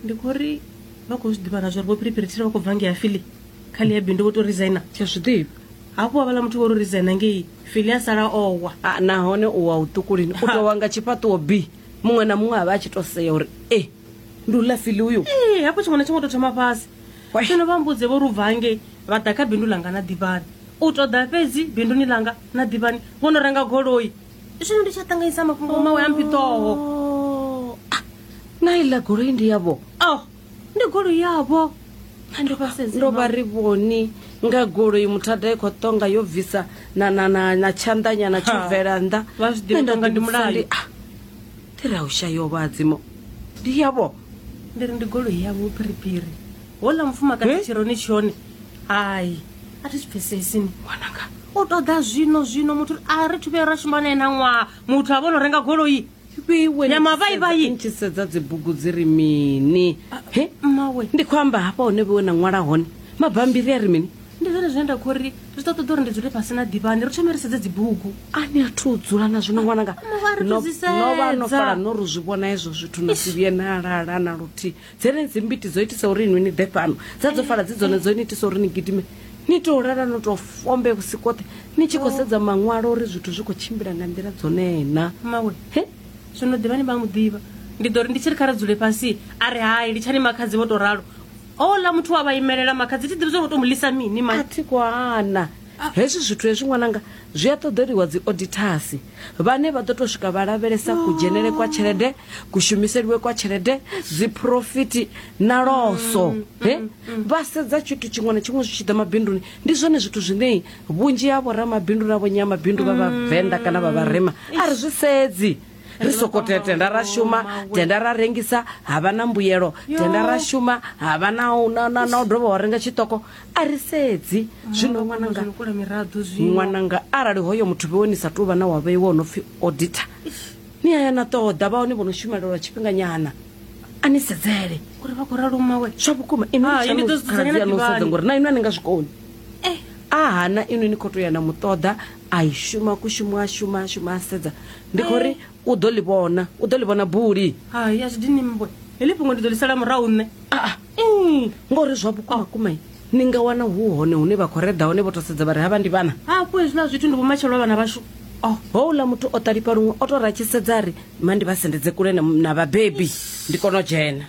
ndi khou ri vha khou zwi ḓivha na zwa uri vho phiriphirithira vha khou bva ngei afili kha ḽi ya bindu vho to resigner tsha zwi ḓivha hafhu wa vhala muthu vho ro resigner ngei fili a sala owa Ah, nahone u wa u ṱukulini u tou wa nga tshifhaṱuwo b muṅwe na muṅwe a vha a tshi to sea uri e ndi u lafili uyu ee hafho tshiṅwe na tshiṅwe u to thoma fhasi Wai. zwino vha mbudze vho ri u bva hangei vha ḓa kha bindu langa na ḓivhani u ṱoḓa fhedzi binduni langa na ḓivhani vho no renga goloi zwino ndi tsha ṱanganyisa mafhungo mawe a mpitoho Oh, ah, na iḽa goloi ndi yavho oh ndi goloi yavho a ndi vhasedze ndo vha ri vhoni nga goloi muthada i khou tonga yo bvisa na, na, na, na tshanḓanyana tsho Ha. bvela nnḓa Vha zwi ḓivha Nṋe nda tonga ndi ḓivhudzisa mulayo. ndi, ah, ndi ra u shayo vhadzimo ndi yavho ndi ri ndi goloi yavho phiriphiri hola mufumakadzi Eh? tshironi tshone hai a thi zwi pfesesi ni ṅwananga u ṱoḓa zwino zwino muthu a ri thuvhe ra shuma nae na ṅwaha muthu a vhono renga goloi nyamavaivaiisedza dzibugu dzi ri mini mmawe ndi khou amba hafha hone vhewe na ṅwala hone mabambiri a ri mini ndi zwone zwine nda khou ri zwi ṱoḓa ṱoḓa uri ndi dzule fhasi na ḓivhani ri thome ri sedze dzibugu a ni a thu u dzula na zwino ṅwananga no vha no fala no ri zwi vhona hezwo zwithu na si vhuye na lala na luthihi Dzenedzi mbiti dzo itisa uri inwi ni ḓe fhano, dza dzo fala dzi dzone dzo ni itisa uri ni gidime ni tou lala no tou fombe vhusi koṱhe ni tshi khou sedza maṅwalo uri zwithu zwi khou tshimbila nga nḓila dzonee na. Mmawe, He? zwino ḓivha ni vha mu ḓivha. Ndi ḓo ri ndi tshi ri kha ri dzule fhasi, a ri hai, litshani makhadzi vho tou ralo. Houḽa muthu wa vha imelela makhadzi thi ḓivhi zwa uri u tou mu lisa mini A mai. thi khou hana. Hezwi zwithu hezwi ṅwananga zwi a ṱoḓeliwa dzi odithasi. vhane vha ḓo tou swika vha lavhelesa kudzhenele kwa tshelede kushumiseliwe kwa tshelede dziphurofiti na loso mm, he mm, mm. vha sedza tshithu tshiṅwe na tshiṅwe zwi tshi ḓa mabinduni ndi zwone zwithu zwine vhunzhi ha vhoramabindu na vhonyamabindu vha vhavenḓa kana vha vharema a ri zwi sedzi ri soko tenda ra shuma tenda ra rengisa ha vha na mbuyelo tenda ra shuma ha vha na u dovha wa renga tshiṱoko a ri sedzi zwino ṅwananga kula miraḓo zwino ṅwananga arali hoyo muthu vhewe ni sa tou vha na wa vheiwa o no pfi auditor ni a ya na ṱoḓa vha hone vho no shumelelwa tshifhinganyana a ni sedzele uri vha khou ralo mawe zwa vhukuma Hai, ni ḓo inwi dzudzanya na no sedza ḓivhani. ngori na inwi a ni nga zwi koni Eh. a hana inwi ni khou tou ya na muṱoḓa a i shuma kushumo a shuma a shuma a sedza ndi khou ri u ḓo ḽi vhona u ḓo ḽi vhona buli hai a zwi dini mbwe heḽi fhungo ndi ḓo ḽi sala murahu nṋe aa mm, ngori zwa vhukumakuma ni nga wana hu hone hune vha khou reda hone vho to sedza vha ri havha ndi vhana hafho hezwiḽa zwithu ndi vhomatshelo a vhana vhashu oh, houḽa muthu o ṱalifha luṅwe o to ra tshi sedza ri ma ndi vha sendedze kule na vhabebi ndi kone u dzhena